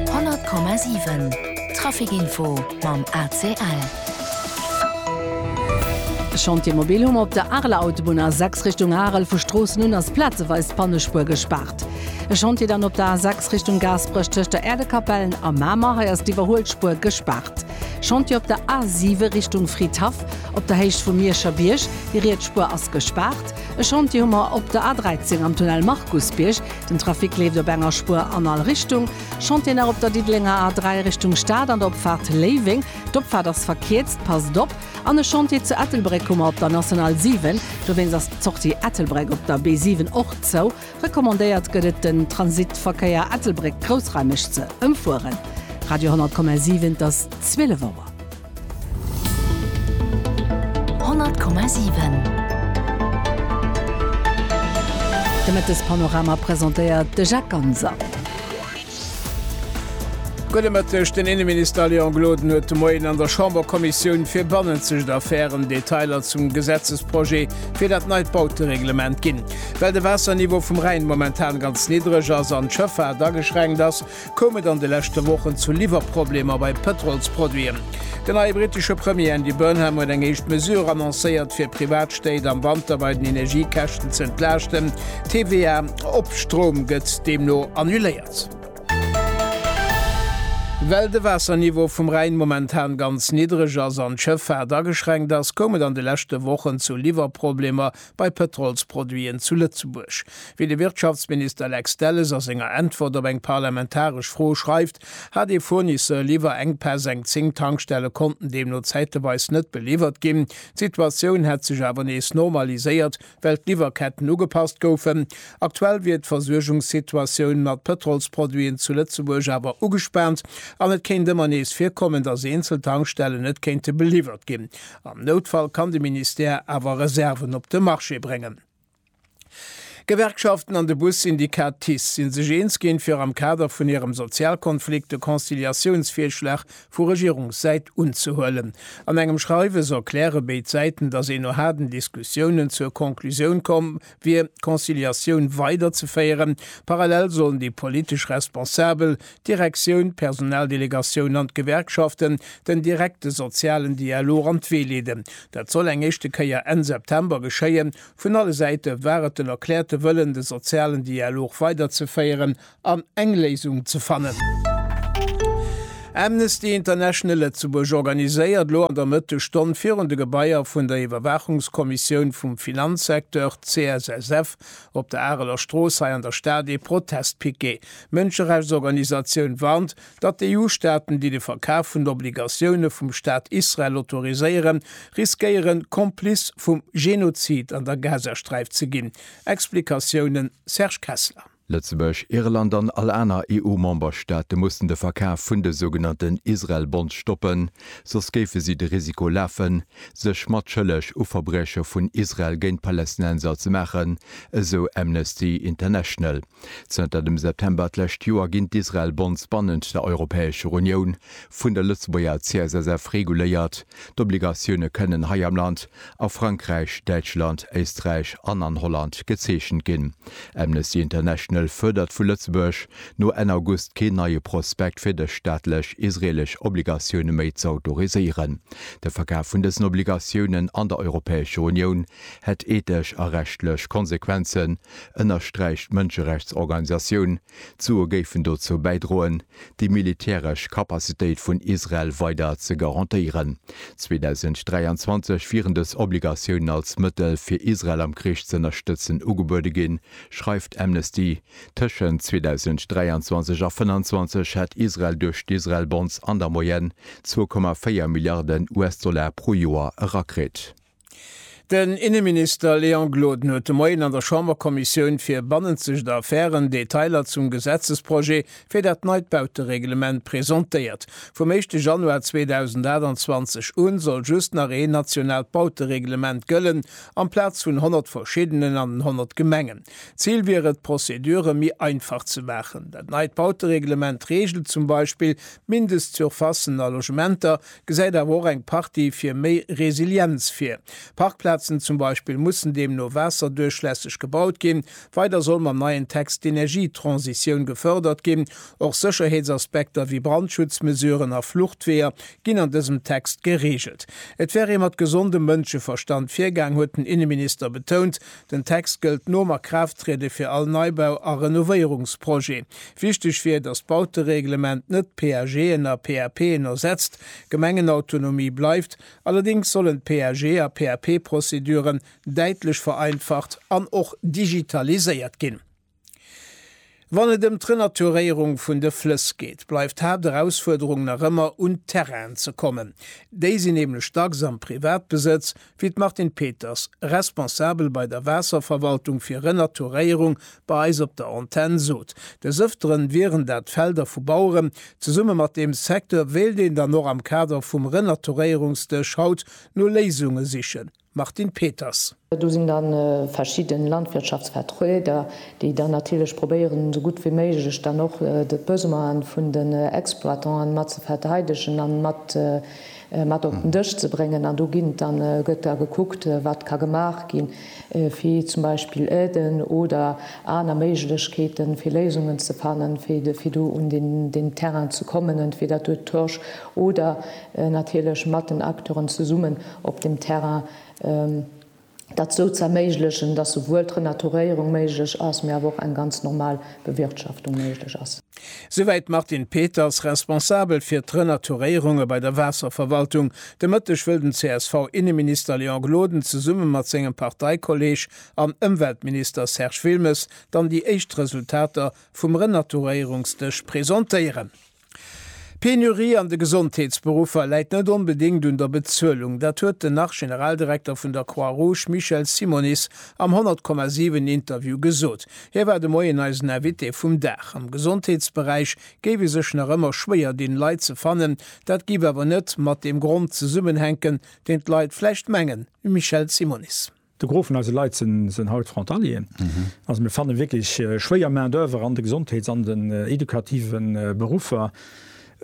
100,7 Trafic Info mam ACL. E Chantier mobil hu mer op der Areler Autobunn, A6 Richtung Arel. Vu Stroossen un ass plazeweis d'Bannespuer gespaart. E Chantier dann op der A6 Richtung Gaasperech tëscht der Äerdekapellen a Mamer. Hei ass d'Iwwerhuelspuer gespaart. Chantier op der A7 Richtung Fridhaff op der Héicht vum Mierscher Bierg. Déi riets Spuer ass gespaart. E Chantier hu mer op der A13 am Tunnel Markusbierg. Den Trafic leeft op enger Spuer an all Richtung. Chantier nach op der Diddelenger A3 Richtung Stad an der Opfaart Léiweng. D'Opfaart ass verkierzt, passt op. An e Chantier zu Ettelbréck hu mer op der National 7. Dowéinst ass d'Sortie Ettelbréck op der B7 och zou. Recommandéiert gëtt et den Transitverkéier Ettelbréck-Groussreimech ze ëmfueren. Radio 100,7 't ass 12 Auer. 100,7 De Mëttespanorama presentéiert de Jacques Ganser. Gudde Mëtteg, Den Inneminister Léon Gloden huet de Moien an der Chamberkommissioun fir bannenzegt Affären Detailer zum Gesetzesprojet fir dat neit Bautereglement ginn. Well de Waasserniveau vum Rhäin momentan ganz niddreg ass an d'Schëffaart ageschränkt ass, koum et an de leschte Wochen zu Liwwerproblemer bei Pëtrolsproduiten. Den neie brittesche Premier Andy Burnham huet eng éischt Mesure annoncéiert, fir Privatstéit am Wanter bei den Energiekäschten ze entlaaschten, d'TVA op Stroum gëtt deemno annuléiert. Well de Waasserniveau vum Rhäin momentan ganz niddreg ass an d'Schëffaart ageschränkt ass, koum et an de leschte Wochen zu Liwwerproblemer bei Pëtrolsproduiten zu Lëtzebuerg. Wéi de Wirtschaftsminister Lex Delles a senger Äntwert op eng parlamentaresch Fro schreift, hat ee Fournisseur liwwer Enkpäss, eng zéng Tankstelle konnten deemno zäiteweis net beliwwert ginn. D'Situatioun hätt sech awer nees normaliséiert, well d'Liwwerketten ugepasst goufen. Aktuell wier d'Versuergungssituatioun mat Pëtrolsproduiten zu Lëtzebuerg awer ugespaant an et kéint ëmmer nees virkommen, datt eenzel Tankstellen net kéinte beliwwert ginn. Am Noutfall kann de Ministère awer Reserven op de Marché bréngen. D'Gewerkschaften an de Bus-Syndikat TICE si sech eens ginn, fir am Kader vun hirem Sozialkonflikt de Conciliatiounsvirschlag vu Regierungssäit unzehuelen. An engem Schreiwes erkläre béid Säiten, datt ee no haarden Diskussiounen zur Conclusioun komm wier d'Conciliatioun weider ze féieren. Parallel sollen déi politesch Responsabel, d'Direktioun, d'Personaldelegatioun an d'Gewerkschaften den direkte sozialen Dialog an d'Wee leeden. Dat soll eng éischte Kéier Enn September geschéien. Vun alle Säite war et den erkläerte Wëllen de sozialen Dialog weider ze féieren an eng Léisung ze fannen. Amnesty International Lëtzebuerg organiséiert elo an der Mëttesstonn virun de Gebaier vun der Iwwerwaachungskommissioun vum Finanzsecteur, CSSF, op der Areler Strooss hei an der Stad ee Protestpiquet. D'Mënscherechtsorganisatioun warnt, datt d'EU-Staaten, déi de Verkaf vun Obligatioune vum Staat Israel autoriséieren, riskéieren, Complice vum Genozid an der Gazasträif ze ginn. Explikatiounen, Serge Kessler. Lëtzebuerg, Irland an all aner EU-Memberstaate mussen de Verkaf vun de sougenannten Israel-Bonds stoppen, soss géife si de Risiko lafen, sech mat schëlleg u Verbrieche vun Israel géint d'Palästinenser ze maachen, esou Amnesty International. Zënter dem September d'lescht Joer ginn d'Israel-Bonds bannent der Europäescher Unioun vun der Lëtzebuerger CSSF reguléiert. D'Obligatioune kënnen hei am Land a Frankräich, Däitschland, Éisträich an an Holland gezeechent ginn. Amnesty International fuerdert vu Lëtzebuerg, no Enn August keen neie Prospekt fir dës staatlech israelesch Obligatioune méi z'autoriséieren. De Verkaf vun dësen Obligatiounen an der Europäescher Unioun hätt ethesch a rechtlech Konsequenzen, ënnersträicht d'Mënscherechtsorganisatioun. D'Sue géifen dozou bäidroen, déi militäresch Kapazitéit vun Israel weider ze garantéieren. 2023 wieren dës Obligatiounen als Mëttel, fir Israel am Krich z'ënnerstëtzen, ugebuede ginn, schreift Amnesty. Tëschent 2023 a 2025 hätt Israel duerch d'Israel-Bonds an der Moyenne zwou Komma véier Milliarden US-Dollar pro Joer erakritt. Den Inneminister Léon Gloden huet de Moien an der Chamberkommissioun fir bannenzegt Affären Detailer zum Gesetzesprojet fir dat neit Bautereglement presentéiert. Vum éischte Januar 2028 un soll just nach een nationaalt Bautereglement gëllen, amplaz vun 100 verschiddenen an den 100 Gemengen. Zil wier et, d'Procedure méi einfach ze maachen. Dat neit Bautereglement reegelt zum Beispill d'Mindestsurfacen a Logementer, Gesäit awer och eng Partie fir méi Resilienz vir. Parkplazen zum Beispill mussen deemno waasserduerchlässeg gebaut ginn. Weider soll mam neien Text d'Energietransitioun gefërdert ginn. Och Sécherheetsaspekter wéi Brandschutzmesuren a Fluchtweeër ginn an dësem Text gereegelt. Et wär ee mat gesondem Mënscheverstand virgaang, huet den Inneminister betount. Den Text gëllt nom Akraafttriede fir all Neibau a Renovéierungsprojet. Wichteg wier, datt d'Bautereglement net d'PAGen a PAPen ersetzt. Gemengenautonomie bleift, allerdéngs sollen d'PAG a PAP-Prozeduren däitlech vereinfacht an och digitaliséiert ginn. Wann et ëm d'Renaturéierung vun de Flëss geet, bleift d'Haapterausfuerderung nach ëmmer un d'Terrainen ze kommen. Déi sinn nämlech dacks am Privatbesëtz, wéi d'Martine Peters, Responsabel bei der Waasserverwaltung fir Renaturéierung, bei eis op der Antenn sot. Des Ëftere wieren dat Felder vu Baueren. Zesumme mat deem Secteur wéilt een dann och am Kader vum Renaturéierungsdësch haut no Léisunge sichen. Martine Peters. Do sinn da verschidden Landwirtschaftsvertrueder, déi dann natierlech probéieren esou gutt wéi méiglech dann och d'Besoinen vun den Exploitanten mat ze verteidegen an mat mat op den Dësch ze bréngen. An do ginn et dann, gëtt da gekuckt wat ka gemaach gi fir zum Beispill Aiden oder aner Méiglechkeeten fir Léisungen ze fannen fir fir do un den den Terrain ze kommen entweder duerch Torsch oder natierlech mat den Acteuren zesummen op dem Terrain, dat esou ze erméiglechen, dass souwuel d'Renaturéierung méiglech ass, mee awer och eng ganz normal Bewirtschaftung méiglech ass. Souwäit d'Martine Peters, Responsabel fir d'Renaturéierunge bei der Waasserverwaltung. De Mëtteg wëll den CSV-Inneminister Léon Gloden zesumme mat sengem Parteikolleeg an Ëmweltminister Serge Wilmes dann déi éischt Resultater vum Renaturéierungsdësch presentéieren. D'Penurie an de Gesondheetsberuffer läit net onbedéngt un der Bezuelung. Dat huet den Nach-Generaldirekter vun der Croix-Rouge Michel Simonis am 100,7 Interview gesot. Hie war de Moien eisen Invité vum Dag. Am Gesondheetsberäich géif ee sech nach ëmmer schwéier dinn, Leit ze fannen. Dat géif awer net mat deem Grond zesummenhänken, deen d'Leit vläicht mengen, Michel Simonis. De Gros vun eise Leit sënn haut Frontalieren. Also mir fanne wierklech schwéier Main d'oeuvre an de Gesondheets an den edukative Beruffer.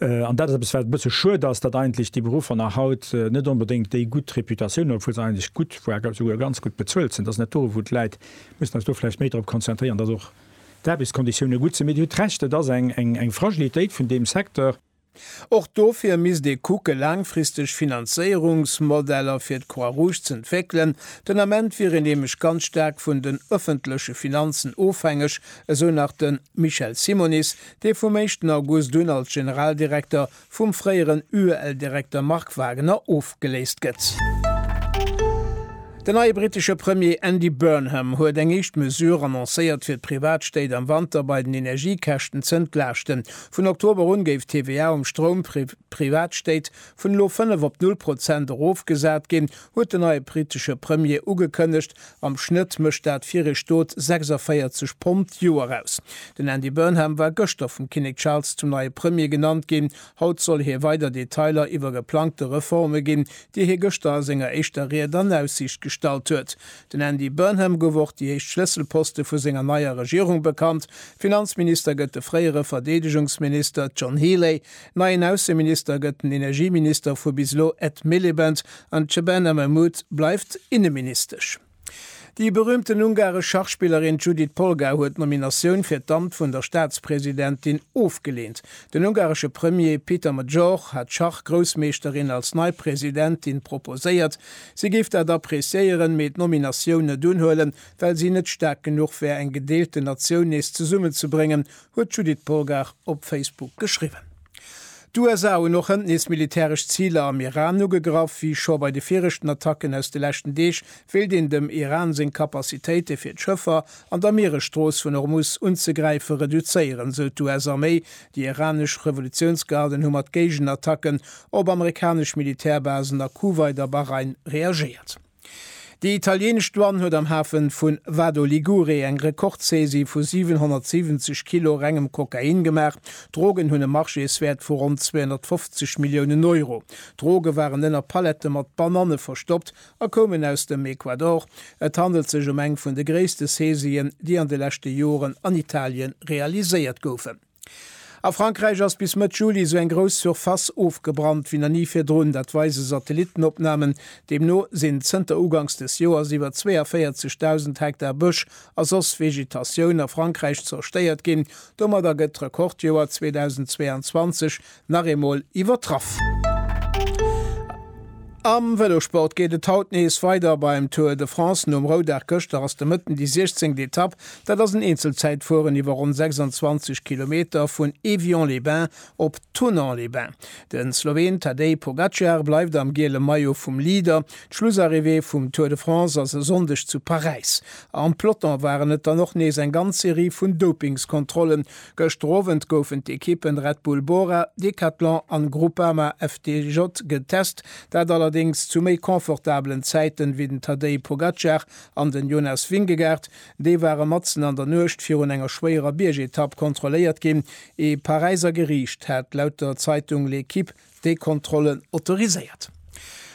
An dat ass eppes, wat e bësse schued ass, datt eigentlech déi Beruffer nach haut net onbedéngt déi gutt Reputatioun hunn, obwuel se eigentlech gutt, voire esouguer ganz gutt bezuelt sinn. Dat ass net do, wou d'Leit mussen eis do vläicht méi drop konzentréieren, datt och d'Aarbechtskonditioune gutt sinn. Mee Dir hutt Recht, et ass eng Fragilitéit vun deem Secteur. Och dofir misst ee kucke laangfristeg Finanzéierungsmodeller fir d'Croix-Rouge z'entwéckelen. Den Ament wier een nämlech ganz staark vun den ëffentleche Finanzen ofhängeg, esou nach de Michel Simonis, dee vum éischten August un als Generaldirekter vum fréieren UEL-Direkter Marc Wagener ofgeléist gëtt. Den neie brittesche Premier Andy Burnham huet eng éischt Mesure annoncéiert, fir d'Privatstéit am Wanter bei den Energiekäschten z'entlaaschten. Vun Oktober un géif d'TVA um Stroum fir Privatstéit vun elo 5 op 0 Prozent erofgesat ginn, huet den neie britesche Premier ugekënnegt. Am Schnëtt mécht dat fir ee Stot 46 Pond d'Joer aus. Den Andy Burnham war gëschter vum Kinnek Charles zum neie Premier genannt ginn. Haut soll hie weider Detailer iwwer geplangte Reforme ginn, déi hie gëschter a senger éischter Ried an Aussiicht gestallt huet. Den Andy Burnham gouf och déi éischt Schlësselposte vu senger neier Regierung bekannt, Finanzminister gëtt de fréiere Verdeedegungsminister John Healey, neien Ausseminister gëtt den Energieminister vu bis elo Ed Miliband an d'Shebana Mahmood bleift Inneministesch. Déi berüümten ungaresch Schachspillerin Judit Polgár huet d'Nominatioun fir d'Amt vun der Staatspresidentin ofgeleent. Den ungaresche Premier Peter Magyar hat d'Schach-Groussmeeschterin als nei Presidentin proposéiert, Si géif dat appreciéieren, mee d'Nominatioun net unhuelen, well si net staark genuch wär eng gedeelte Natioun nees zesummenzebréngen, huet d'Judith Polgar op Facebook geschriwwen. D'USA hunn och hënt nees militäresch Ziler am Iran ugegraff. Wéi scho bei de viregten Attacken aus de leschten Deeg, wéilt een dem Iran seng Capacitéite fir d'Schëffer an der Mieresstrooss vun Hormuz unzegräife reduzéieren, sou d'US-Arméi. Déi iranesch Revolutiounsgarden hu mat Géigenattacken op amerikanesch Militärbasen a Kuwait a Bahrain reagéiert. Déi italieenesch Douane huet am Hafe vu Vado Ligure eng Rekordsaisie vu 770 Kilo rengem Kokain gemaach. D'Drogen hunn e Marchéeswäert vu ronn 250 Milliounen Euro. D'Droge waren ënner Palette mat Bananne verstoppt a koumen aus dem Ecuador. Et handelt sech ëm eng vun de gréisste Saisien, déi an de leschte Joren an Italien realiséiert goufen. A Frankräich ass bis Mëtt Juli esou eng grouss Surface ofgebrannt wéi nach ni virdrun. Dat weise Satellittenopnamen. Deemno sinn zënter uganks des Joers iwwer 42.000 Hektar Bësch a soss Vegetatioun a Frankräich zerstéiert ginn. Domadder gëtt d'Rekordjoer 2022 nach eemol iwwertraff. Am Vëlosport geet et haut nees weider beim Tour de France. Nom Roudag gëschter ass de Mëtten déi 16. Etapp. Dat ass en Eenzelzäitfueren iwwer ronn 26 Kilometer vun Évian-les-Bains op Thonon-les-Bains. De Sloween Tadej Pogacar bleift am giele Maillot vum Leader. D'Schlussarrivée vum Tour de France ass e Sonndeg zu Paräis. Am Peloton waren et dann och nees eng ganz Serie vun Dopingskontrollen. Gëschter Owend goufen d'Ekippen Red Bull Bora, Decathlon an Groupama FDJ getest, dat allerdéngs zu méi confortabelen Zäiten wéi den Tadej Pogacar an den Jonas Vingegaard. Déi ware matzen an der Nuecht virun enger schwéierer Biergetapp kontrolléiert ginn. Ee Paräiser Geriicht hat laut der Zeitung L'Equipe déi Kontrollen autoriséiert.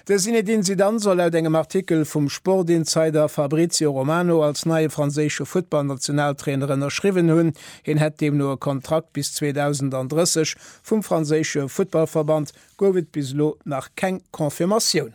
De Zinedine Zidane soll laut engem Artikel vum Sportinsider Fabrizio Romano als neie franséische Futtballnationaltrainer ënnerschriwwen hunn. Hien hätt deemno e Kontrakt bis 2030. Vum franséische Futtballverband gouf et bis elo nach keng Confirmatioun.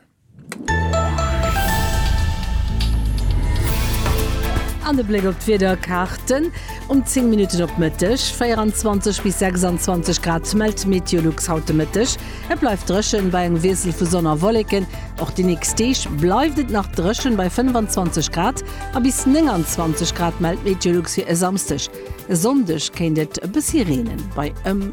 An e Bléck op d'Wiederkaarten, Um 10 Minutten op Mëtteg 24 bis 26 Grad mellt Meteolux haut de Mëtteg. Et bleift dréchen bei engem Wiessel vu Sonn a Wolleken. Och déi nächst Deeg bleift et nach dréchen bei 25 Grad a bis 29 Grad mellt Meteolux fir e Samsdeg. E Sonndeg kéint et e bëssi reenen, bei ëm.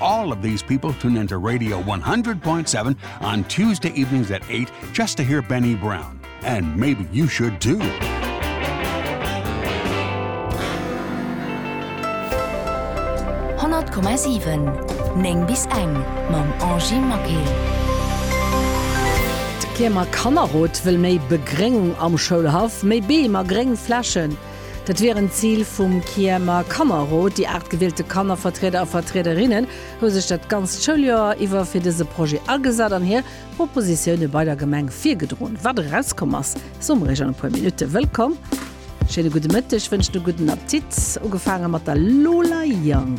All of these people tune in to Radio 100.7 on Tuesday evenings at 8 just to hear Benny Brown. And maybe you should too. Neng bis eng mam Angie Maquet. D'Kiemer Kannerrot wëll méi Begréngung am Schoulhaff, méi Beem a gréng Flächen. Dat wier en Zil vum Kiemer Kannerrot. Déi aacht gewielte Kannervertrieder a Vertriederinnen hu sech dat ganzt Schouljoer iwwer fir dëse Projet agesat an hir Propositioune bei der Gemeng virgedroen. Wat erauskomm ass, soe mer Iech an e puer Minutte. Wëllkomm, schéine gudde Mëtteg, wënschen e gudden Appetit, ugefaange mat der Lola Young.